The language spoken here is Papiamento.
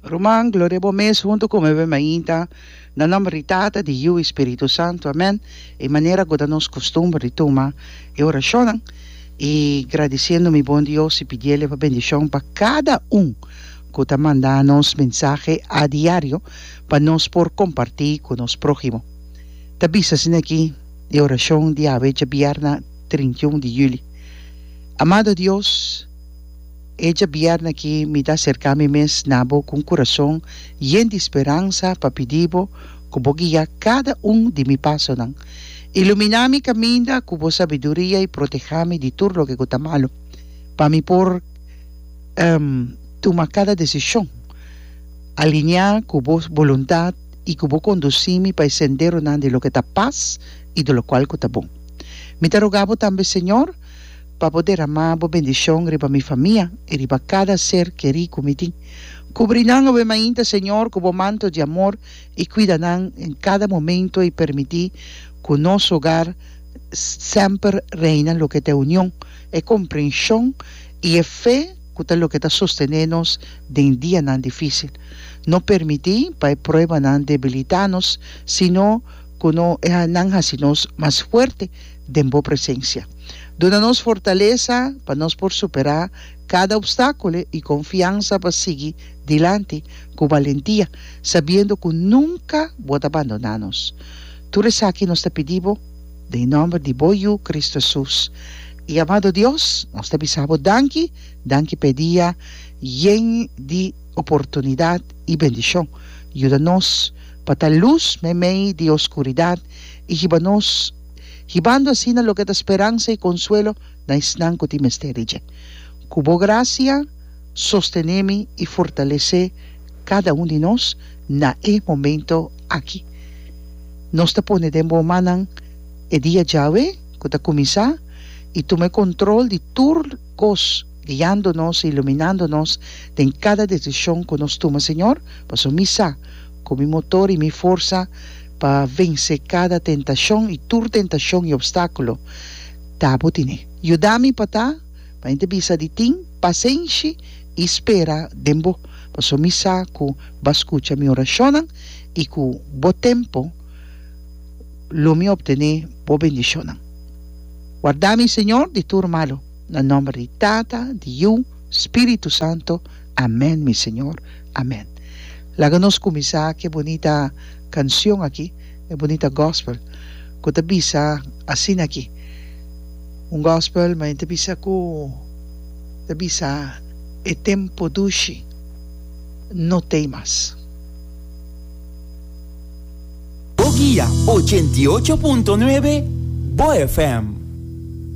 Ruman, gloria bo mes huntu ku mi ben mainta, na nòmber di Tata, di Yu i Spiritu Santu. Amèn. E manera ku ta nos kustumber di tuma e orashonnan i gradisiendo mi bon Dios i pidiel e pa bendishon pa kada un ku ta manda nos mensahe a diario pa nos por kompartí ku nos próhimo. Ta bisa asina aki e orashon di awe djabièrna trinta i un di yüli, Amado Dios, E djabièrna aki mi ta aserká mi mes na bo ku un kurason yen di speransa pa pidi bo ku bo guia kada un di mi pasonan. Iluminá mi kaminda ku bo sabiduria i protehá mi di tur loke ku ta malu, pa mi por tuma kada desishon alineá ku bo boluntat i ku bo kondusí mi pa e senderonan di loke ta pas i di lokual ku ta bon. Mi ta rogá bo tambe, Señor, pa bo deramá bo bendishon riba mi famia i riba kada ser kerí ku mi tin. Kubri nan obe mainta, Señor, ku bo manto di amor i kuida nan den kada momentu i permití ku nos hogar semper reina loke ta e union, e komprenshon i e fe ku ta loke ta sostené nos den dianan difísil. No permití pa e pruebanan debilitá nos, sino ku no e nan hasi nos mas fuerte. den bo presencia. Duna nos fortalesa pa nos por supera cada obstacule y confiansa pa sigui dilanti cu balentia, sabiendo cu nunca bo ta bandona nos. Tur esaki nos ta pidi bo den nomber di bo Yu Cristo Jesus. Y amado Dios, nos ta bisa bo danki, danki p'e dia yen di oportunidad y bendicion. Yuda nos pa ta luz meimei di oscuridad y hiba nos. hibando asina loke ta speransa i konsuelo na esnan ku tin mester di dje. Ku bo grasia sostené mi i fortalesé kada un di nos na e momentu aki. Nos ta pone den bo mannan e dia djawe ku ta kuminsá i tum'é kontrol di tur kos, guiando nos i iluminando nos den kada desishon ku nos tuma, Señor, pasobra mi sa, Ku mi motor i mi forsa pa vense kada tentashon i tur tentashon i opstákulo ta bo tine. Yuda mi pa ta, pa mi ta bisa di tin, pasenshi i spera den bo, paso mi sa ku bo a skucha mi orashonnan i ku bo tempu lo mi optené bo bendishonnan. Warda mi, Señor, di tur malu. Na nòmber di Tata, di Yu, Spiritu Santu. Amen mi Señor amen. Laga nos kuminsá ku e bunita kanshon aki, e bunita gospel ku ta bisa asina aki, un gospel men ta bisa ku ta bisa e tempu dushi no t'ei mas. Bo guia ochenta i ocho punto nuebe, bo FM.